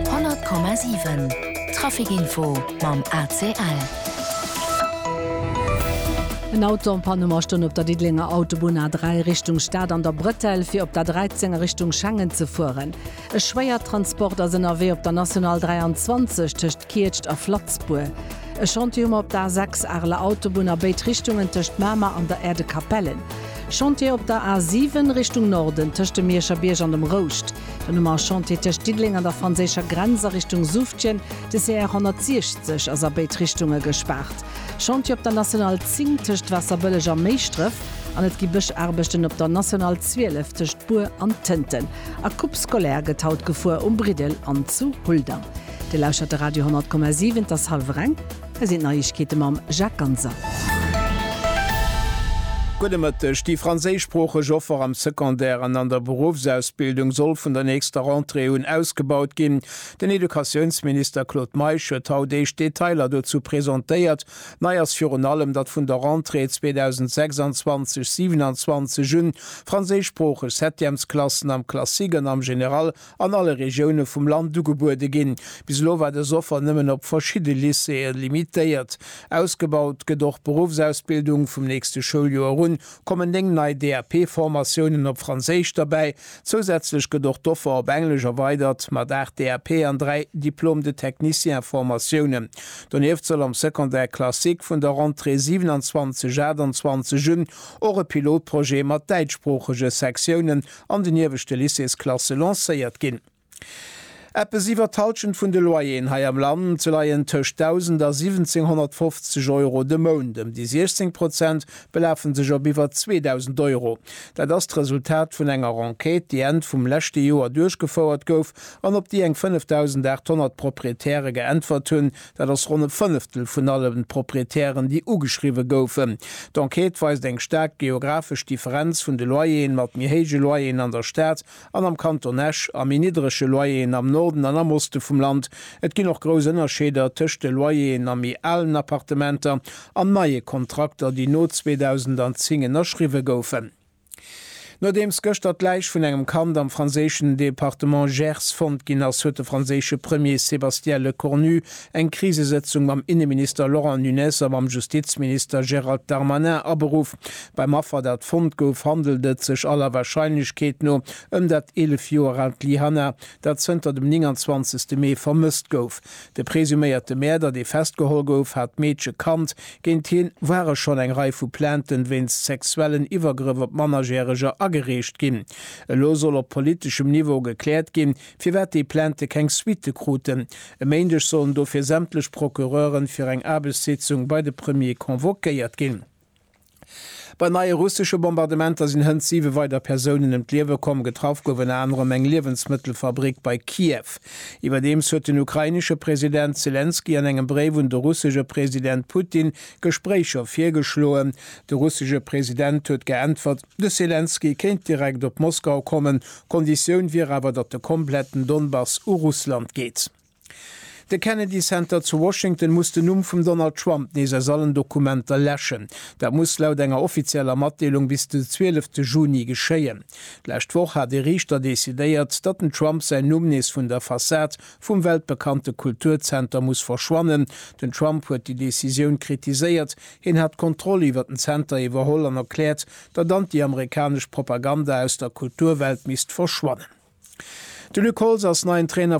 100,7 Trafic Info mam ACL. En Auto en panne ma stoung op der Diddelenger Autobunn A3 Richtung Stad an der Bretelle fir op der 13 a Richtung Schengen ze fueren. E Schwéiertransport ass ënnerwee op der National 23 tëscht Kietscht a Flatzbuer. E Chantier hu mer op der A6 Areler Autobunn a béid Richtungen tëscht Mamer an der Aire de Capellen. Chantier op der A7 Richtung Norden tëscht dem Mierscher Bierg an dem Rouscht. Den Hommage Chantier tëscht Diddeleng an der franséischer Grenz a Richtung Suftjen, de CR 160, ass a béid Richtunge gespaart. Chantier op der National 10 tëscht Waasserbëlleg a Méischdref an et gi Bëschaarbechten op der National 12 tëscht Bur an Tënten. A Coupe scolaire gëtt haut gefuer um Briddel an zu Huldang. Dir lauschtert de Radio 100,7, et ass hallwer eng. Hei sinn d'Neiegkeete mam Jacques Ganser. Gudde Mëtteg. Déi franséischsproocheg Offer am Secondaire an an der Beruffsausbildung soll vun der nächster Rentrée un ausgebaut ginn. Den Educatiounsminister Claude Meisch huet haut éischt Detailer dozou presentéiert. Nei ass virun allem, datt vun der Rentrée 2026, 27 un franséischsproocheg Septièmesklassen am Classique an am Général an alle Regioune vum Land ugebuede ginn. Bis elo war dës Offer nëmmen op verschidde Lycéeë limitéiert. Ausgebaut gëtt och d'Beruffsausbildung, vum nächste Schouljoer un kommen 9 nei DAP-Formatiounen op Franséisch derbäi. Zousätzlech gëtt och d'Offer op Englesch erweidert, mat 8 DAP an 3 Diplôme de technicien-Formatiounen. Donieft soll am Secondaire classique vun der Rentrée 27, 28 un och e Pilotprojet mat däitschsproochege Sektiounen an den ieweschte Lycéesklasse lancéiert ginn. Eppes iwwer d'Halschent vun de Loyeren hei am Land leien tëscht 1.000 a 1.750 Euro de Mount, ëm déi 16 Prozent belafe sech op iwwer 2.000 Euro. Dat ass d'Resultat vun enger Enquête, déi Enn vum leschte Joer duerchgefouert gouf an op déi eng 5.800 Proprietäre geäntwert hunn, Dat ass ronn e Fënneftel vun allen Proprietären, déi ugeschriwwe goufen. D'Enquête weist eng staark geographesch Differenz vun de Loyeren, mat méi héije Loyeren an der Stad an am Kanton Esch a méi niddrege Loyeren am Norden an am Oste vum Land. Et ginn och grouss Ënnerscheeder tëscht de Loyeren a méi alen Appartementer an neie Kontrakter, déi no 2010 ënnerschriwwe goufen. Nodeems gëschter d'Läich vun engem Kand am franséischen Departement Gers fonnt ginn ass, huet de franséische Premier Sébastien Lecornu eng Krisesëtzung mam Inneminister Laurent Nunez a mam Justizminister Gérald Darmanin aberuff. Beim Affer, dat fonnt gouf, handelt et sech aller Warscheinlechkeet no ëm dat 11 Joer aalt Lyhanna, dat zënter dem 29 Mee vermësst gouf. De presuméierte Mäerder, dee festgeholl gouf, hat d'Meedche kannt. Géint hien ware schonn eng Rei vu Plainten wéinst sexuellen Iwwergrëff op Mannerjäreger agereecht ginn. Elo soll op politeschem Niveau gekläert ginn, firwat déi Plainte keng Suitte kruten. E Méindeg sollen dofir sämtlech Procureure fir eng Aarbechtssitzung bei de Premier convoquéiert ginn. Bei neie russesche Bombardementer sinn hënt siwe weider Persounen ëm d'Liewe komm. Getraff gouf ënner anerem eng Liewensmëttelfabrick bei Kiew. Iwwerdeems huet den ukrainesche President Selenskyj an engem Bréif un de russesche President Putin Gespréicher virgeschloen. De russesche President huet geäntwert, de Selenskyj kéint direkt op Moskau kommen, d'Konditioun wier awer, datt de kompletten Donbass u Russland geet. De Kennedy Center zu Washington muss den Numm vum Donald Trump nees aus allen Dokumenter läschen. Dat muss laut enger offizieller Matdeelung bis de 12 Juni geschéien. D'lescht Woch hat ee Riichter decidéiert, datt den Trump säin Numm nees vun der Fassad vum weltbekannte Kulturzenter muss verschwannen. Den Trump huet déi Decisioun kritiséiert. Hien hat d'Kontroll iwwer den Zenter iwwerholl an erkläert, datt anti-amerikanesch Propaganda aus der Kulturwelt misst verschwannen. De Luc Holtz ass neien Trainer.